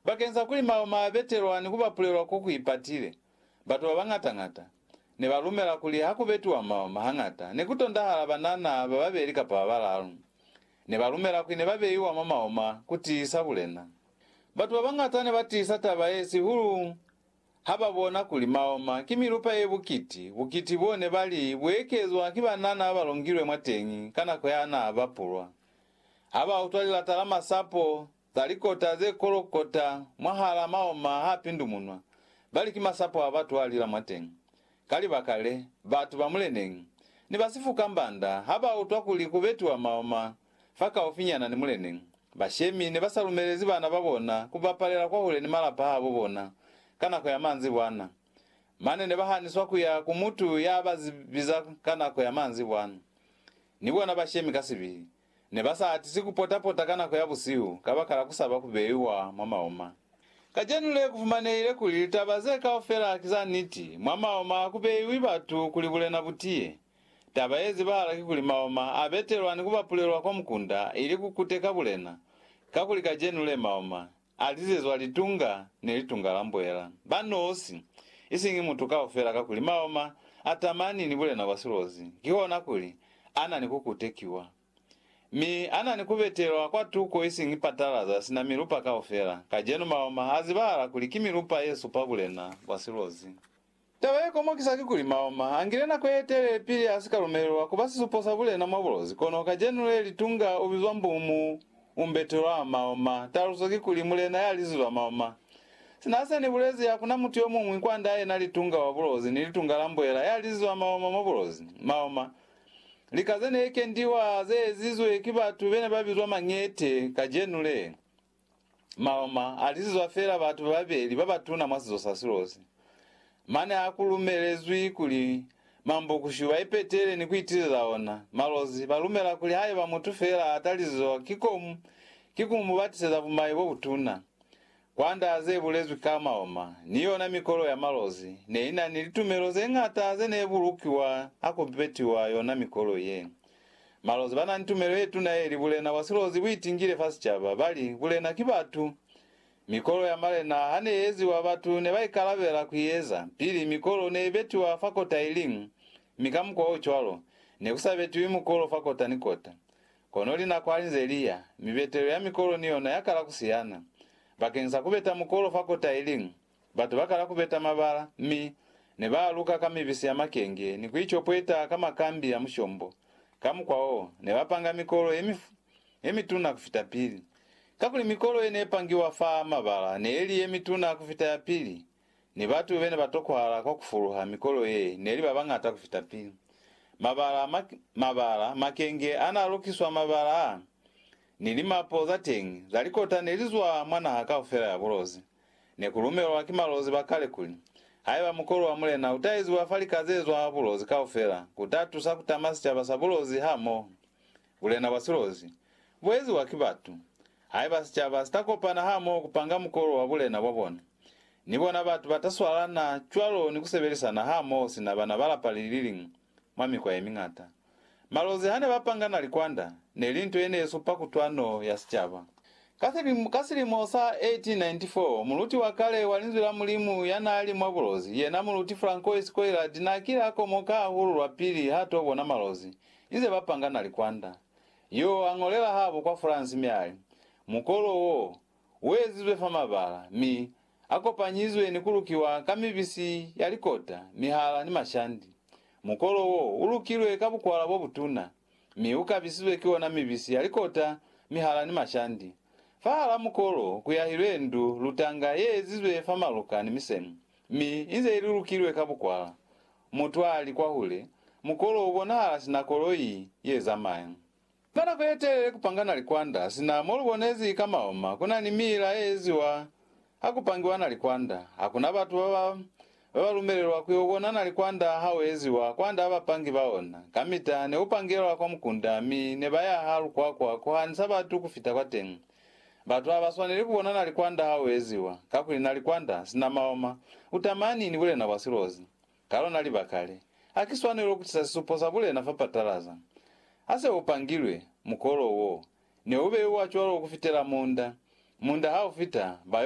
Bakeng sa kuli mao ma betelwa ni ku bapulelwa ko ku ipatile, batu ba bañata-ñata ne ba lumela kuli ha ku betiwa mao ma hañata ne ku tondahala banana ba babeli kapa ba balalu. Ne ba lumela kuli ne ba beiwa mwa mao ma ku tiisa bulena. Batu ba bañata ne ba tiisa taba ye sihulu ha ba bona kuli mao ma ki milupa ye bukiti, bukiti bo ne ba li bu ekezwa ki banana ba ba longilwe mwateñi ka nako ya n'a bapulwa. Ha ba utwa lilata la masapo, Za likota ze kolokota mwahal'a maoma h'a pindumunwa, bali ki masapo a batu a lila mwateñi. Ka libaka le, batu ba muleneñi, ni ba sifu kamba nda, ha ba utwa kuli ku betiwa maoma fa kaufinyana ni muleneñi, bashemi ne ba sa lumelezi bana ba bona ku bapalela kwahule ni malapa a bo bona ka nako ya manzibwana. Mane ne ba haniswa ku ya ku mutu ya ba biza ka nako ya manzibwana, ni bona bashemi ka sibihi. Ne ba sa atisi ku pota-pota ka nako ya busihu kabakala ku saba ku beiwa mwa maoma. Kacenu le ku fumanehile kuli litaba ze kaufela ki za niti, mwa maoma ha ku beiwi batu kuli bulena bu tiye. Taba ye zibahala ki kuli maoma a betelwa ni ku bapulelwa kwa mukunda ili ku kuteka bulena, kakuli kacenu le maoma A lizezwa litunga ni litunga la mbwela, ba nosi, isiñi mutu kaufela kakuli maoma a tamani ni bulena bwa silozi, kihona kuli, a na ni ku kutekiwa. Mi a na ni ku betelwa kwa tuko isiñi patalaza sina milupa kaufela, kacenu maoma a zibahala kuli ki milupa ye supa bulena bwa silozi. Taba ye komokisa kikuli Mahoma angile nako ye telele pili a si ka lumelelwa ku ba sisupo sa bulena mwa bulozi, kono kacenu le litunga u bizwa Mbumu Umberto wa Mahoma, taluso kikuli, mulena ya lizi lwa Mahoma. Sina se ni bulezi, ha ku na mutu yo muñwi kwand'a yena litunga wa bulozi ni litunga la mbuela ya lizi lwa Mahoma mwa bulozi. Mahoma, lika ze ne kendiwa ze ezizwe ki batu be ne ba bizwa mañete, kacenu le, Maloma a lizizwa feela batu babeli ba batuna mwa sizo sa Silosi. Mane ha ku lumelezwi kuli Mambokushu ba ipetele ni ku itileza ona, Malozi ba lumela kuli haiba mutu feela a talizizwa ki komu, ki ku mu batiseza bumai bo butuna. Kwanda ze bulezwi ka Maloma, ni yona mikolo ya Malozi ne i na ni litumelo ze ñata ze ne bulukiwa ha ku betiwa yona mikolo ye. Malozi ba na ni tumelo ye tuna ye li, Bulena bwa silozi bu itingile fa sicaba. Ba li, Bulena ki batu. Mikolo ya malena ha ne i eziwa, batu ne ba ikalabela ku i eza. Pili, mikolo ne i betiwa fa kota i liñwi, mi ka mukwa o cwalo, ne ku sa betiwi mukolo fa kota ni kota. Kono linako ha li nze li ya, mibetelo ya mikolo ni yona ya kala ku siyana. Bakeñisa ku beta mukolo fa kota i liñwi, Batu bakala kubeta mabala, mi nebaaluka ka mibisi ya makenge ni kuicopweta ka makambi ya mushombo. Ka mukwa wo, nebapanga mikolo yemituna kufita pili. Kakuli mikolo yenepangiwa fa mabala neeli yemituna kufita ya pili, ni batu benebatokwahala kwa kufuluha mikolo ye neli babañata kufita pili. Mabala, mabala, makenge anaalukiswa mabala a, ni limapo zateñi zalikota nelizwa mwa naha kaufela ya bulozi. Ne ku lumelwa ki malozi ba kale kuli, Haiba mukolo wa mulena u ta eziwa fa lika ze zwaa bulozi kaufela, ku ta tusa ku tama sicaba sa bulozi hamoho. Bulena bwa silozi, bu eziwa ki batu. Haiba sicaba si ta kopana hamoho ku panga mukolo wa bulena bwa bona, ni bona batu ba ta swalana cwalo ni ku sebelisana hamoho sina bana ba lapa li liñwi. Mwa mikwa ye miñata, malozi ha ne ba pangana likwanda ne li nto ye ne supa kutwano ya sicaba. Ka silimo sa 1894, muluti wa kale wa Linzwi la Mulimu ya naa li mwa bulozi, yena Muluti Francois Coillard naa kile a komoka hahulu lwapili ha to bona malozi inze ba pangana likwanda. Yoo a ñolela habo kwa France mi a li, Mukolo wo, u ezizwe fa mabala, mi a kopanyizwe ni ku lukiwa ka mibisi ya likota, mihala ni mashandi. Mukolo wo u lukilwe ka bukwala bo butuna, mi u kabisizwe ki ona mibisi ya likota, mihala ni mashandi. Fahal'a mukolo ku yahilwe ndu lutanga ye ezizwe fa maluka ni misemu, mi inze ili lukilwe ka bukwala. Mutu a li kwahule, mukolo u bonahala sina koloi ye zamaya. Ka nako ye telele ku panga na likwanda, sina mo lu bonezi ka maoma ku na ni miila ye eziwa ha ku pangiwa na likwanda. Ha ku na batu ba ba ba ba lumelelwa ku yo bona na likwanda ha u eziwa kwand'a bapangi ba ona. Kamita ne u pangelwa kwa mukunda mi ne ba ya ha lukwakwa ku hanisa batu ku fita kwa teñi. Batu ha ba swaneli ku bona na likwanda ha u eziwa, kakuli na likwanda, sina maoma, u tamani ni bulena bwa silozi. Ka lona libaka le, ha ki swanelo ku tisa sisupo sa bulena fa patalaza. Ha se u pangilwe, mukolo wo ne u beiwa cwalo ku fitela munda. Munda ha u fita, ba yo